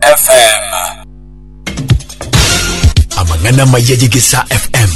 FM. Amang'ana amaya ye Gisa FM,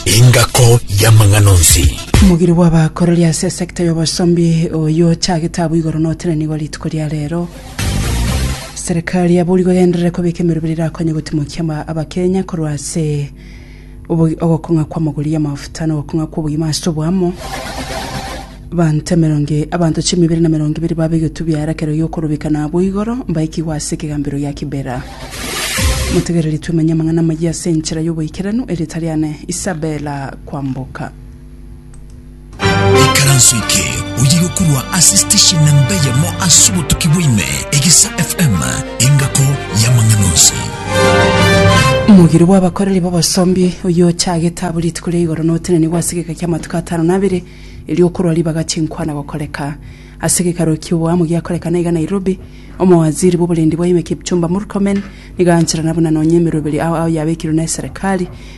engako y'amang'ana onsi. Omogiri bw'abakorori ase esekta y'obosombi oyio ochagete abwo igoro notenene nigo rituko ria rero. Serikali yaboorigwe egenderere kobeka emerobera erakonye gotimokia ama- abakenya korwa ase Obogi- ogokong'a kw'amagori y'amafuta na ogokong'a kw'obogima ase oboamo. Abanto emerongo e- abanto chimi ibere na emerongo ibere babe egetubio aro ekero giokorobeka na abwo igoro, mbaikigwe ase ekegambero gia Kibera. Motegereri twemenye amang'ana amayia ase enchera y'oboikeranu, eritariane Isabela kwamboka. Ekaranso eke oyiga korwa ase station na mbe yamo ase obotuki bwaime egisa FM engako y'amang'ana onsi. Omogiri bw'abakoreri b'obosombi oyio ochagete abwo rituko ria igoro na otenenigwe ase egeka kia amatuko atano na abere erio okorwa ribaga chinkwana gokoreka ase gekaro ki'oboamo giakorekana iga Nairobi omowaziri bw'oborendi bwaime Kipchumba Murkomen nigo aancherana buna nonya emeroberi ao ao yabekirwe neserikali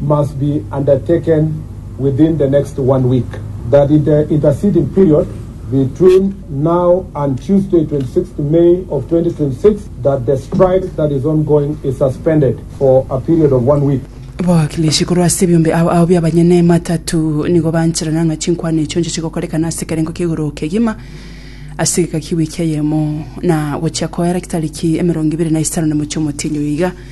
must be undertaken within the next one week, that in the interceding period between now and Tuesday 26th May of 2026 that the strike that is ongoing is suspended for a period of one week. Abawakilishi korwa ase ebiombe ao ao bi'abanyene ematatu nigo bancherana ng'a chinkwana echio nchiche gokorekana ase ekerengo ki'igoro kegima ase egeka ki'ewiki eyemo, na gochia koera kitariki emerongo ibere na isano na mochie omotienyi oyo iga.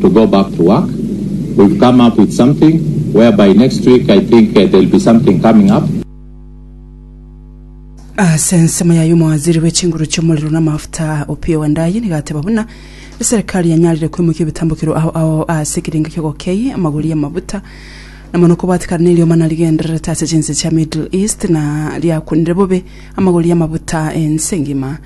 to go back to work, we've come up with something whereby next week I think there'll be something coming up. Ase ensemo yaye omowaziri bwe chinguru chi'omorero na amafuta Opiyo Wandayi nigo ateba buna eserekari yanyarire koimokia ebitambukero ao ao ase ekerengo ki'ogokei amagori y'amabuta na mono kobwatekana neriomana rigendererete ase chinse chia Middle East na riakwenire bobe amagori y'amabuta ense engima.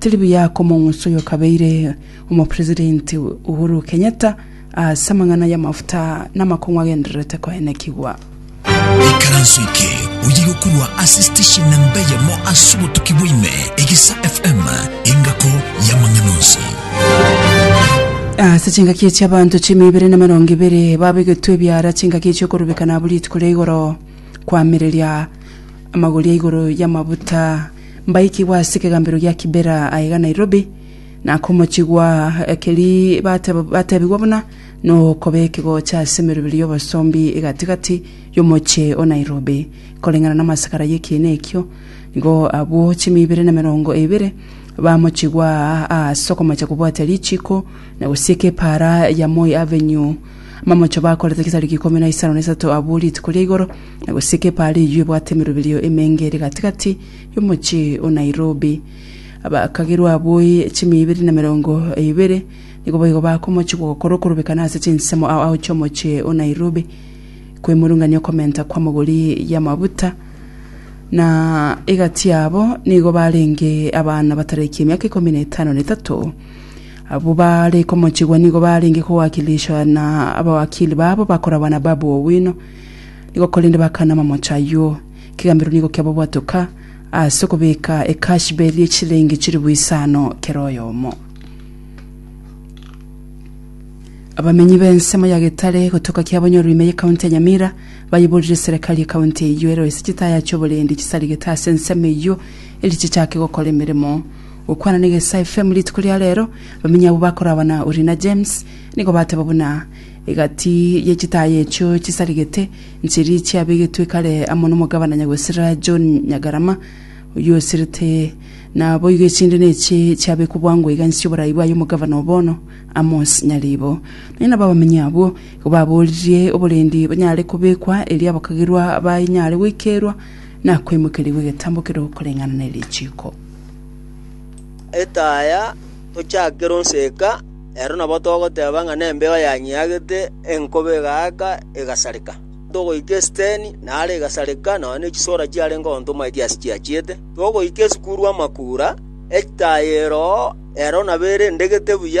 Tiri buya komong'usa oyo okabeire omopresidenti Uhuru Kenyatta ase amang'ana y'amafuta namakong'u agendererete koenekigwa. Ikaranso eke oye gokorwa ase station namba eyemo ase obotuki bwaime Egisa FM engako y'amang'ana onsi. Ase chingaki echi abanto chiemia ibere na emerongo ebere babegetwe ebiara chingaki echi okorubekana abwo rituko ria igoro koamereria amagori ya igoro y'amabuta mbaikigwe ase ekegambero gia Kibera aiga Nairobi, na akomochigwa keri bateba batebigwa buna nokoba ekegocha ase emeroberi y'obosombi egatigati y'omochie o Nairobi. Koreng'ana namasakara yekiina ekio, nigo abwo chimi ibere na emerongo ebere bamochigwa aa ase okomocha kobwatia richiko na gosieka epaara ya Moi Avenue. Amamocho bakorete chisariki ikomi na isano na isato abwo rituko ria igoro, Na gose kebare eyio ebwate emeroberio emenge ere gati-gati y'omochie o Nairobi. Abakagerwa aboi chimia ibere na emerongo ebere nigo boigo bakomochigwa gokora okorobekana ase chinsemo ao ao chi'omochie o Nairobi koimorungania okomenta kw'amagori y'amabuta, na egati yabo nigo barenge abana batarakia emiaka ikomi na etano na etato. Abwo bare komochigwa nigo barenge kowakilishwa na abawakili babo bakorabana Babu Owino, Nigo korende bakana amamocho ayio. Kegambero nigo kiababwatoka ase okobeka ekashberi ye chisilingi chilifu isano kera oyomo. Abamenyi b'ensemo ya Getare gotoka kiabanyorwa ime y'ekaunti ya Nyamira bayiborire serekari y'ekaunti eyio eroe ase chitaya chi'oborendi chisarigete ase ensemo eyio eri chichake gokora emeremo. Gokwana na Egesaa FM rituko ria rero, abamenyi abwo bakorabana Orina James nigo bateba buna Egati ye chitaya echio chisarigete nchiri chiabegetwe kare amo nomogabana nyagwesera John Nyagarama, oyio osirete. Naboigo echinde nechi chiabekwa bwango iga inse y'oborai bwaye omogabana o bono, Amos Nyaribo. Nonya nabo abamenyi abwo igo baboririe oborendi banyare kobekwa erio abakagerwa banyare goikerwa na koimokerigwa egetambo keria okoreng'ana nerichiiko. Etaya tochakera onseka. Ero nabo togoteba ng'a nembeo yanyeagete enkobe egaaka egasareka. Togoika esiteni naro egasareka, nonya ne chisora chiarenge onto omoerio ase chiachiete. Togoika esukuru amakuura, echitayero ero nabo ere ndegete buya.